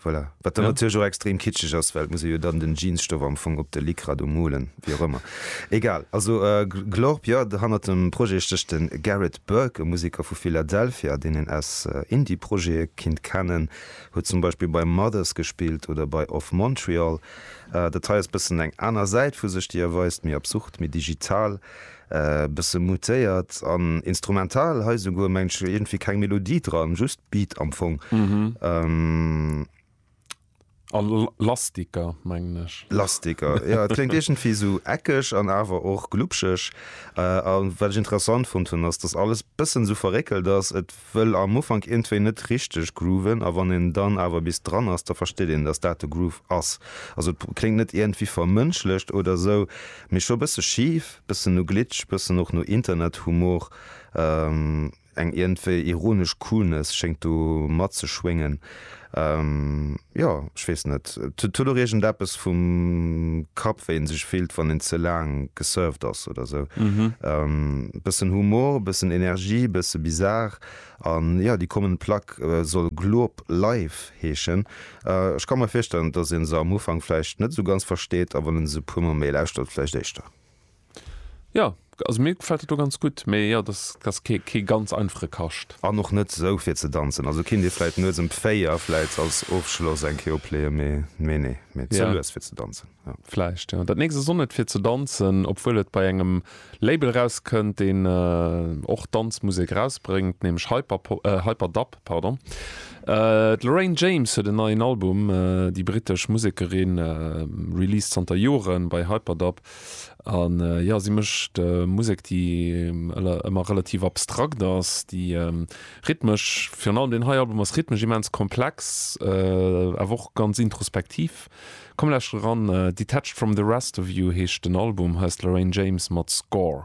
Voilà. Wat dann natierlech och extrem kitscheg ass, well et muss ee jo dann den Jeansstoff am Fong op de Lycra do molen, wéi och ëmmer. Egal. Also Glorp, jo, hannert dem Projet stécht de Garrett Burke, e Museker vu Philadelphia, deen een aus Indie-Projete kinnt kennen. Huet zum Beispill bei Mothers gespillt oder bei Of Montreal. Dat hei ass bëssen eng aner Säit vu sech, déi erweist, méi absurd, méi digital. E bësse mutéiert an instrumental hei esouguer, mengen ech. Iergendwéi keng Melodie dran, just Beat am Fong. A lastiger, mengen ech. Lastiger, jo. Et kléngt iergendwéi esou eckeg an awer och glubscheg. A wat ech interessant fonnt hunn, ass, dass alles e bëssen esou verréckelt ass. wëll am Ufank iergendwéi net richteg grooven a wann een dann awer bis dran ass, da versteet een, dass dat de Groove ass. Also et kléngt net iergendwéi vermënschlecht oder esou, mee scho bësse schif, bëssen no Glitch, bëssen och no Internethumor, eng iergendwéi ironesch Coolness schéngt do matzeschwéngen. Jo, ech weess net. Et huet och iergend eppes vum Kapp, wéi ee sech fillt, wann een ze laang gesurft ass oder sou. E bëssen Humor, e bëssen Energie, e bësse bizarre. An jo, déi kommend Plack soll Gloop Live heeschen. Ech ka mer virstellen, dass ee se am Ufank vläicht net esou ganz versteet, a wann ee se e puer Mol méi lauschtert, vläicht éischter. Jo, also mir gefällt dat do ganz gutt, mee jo dat ass kee ganz einfache Kascht. An och net sou fir ze danzen, also kinnt ee vläit nuets em 4 vläit als Ofschloss eng Kéier opleeën, mee mee nee, mee ze lues fir ze danzen, jo. Vläicht, jo. Dat nächst ass och net fir ze danzen, obwuel et bei engem Label erauskënnt, deen och Danzmusek erausbréngt, nämlech Hyperdub. Pardon. D'Lorraine James huet en neien Album. Déi brittesch Musekerin released zanter Joren bei Hyperdub. An jo, si mécht Musek, déi ëmmer relativ abstrakt ass, déi rhythmesch, virun allem deen hei Album ass rhythmesch immens komplex, awer och ganz introspektiv. Komm lauschter eran, Detached From The Rest Of You heescht den Album, heiers d'Lorraine James mat Score.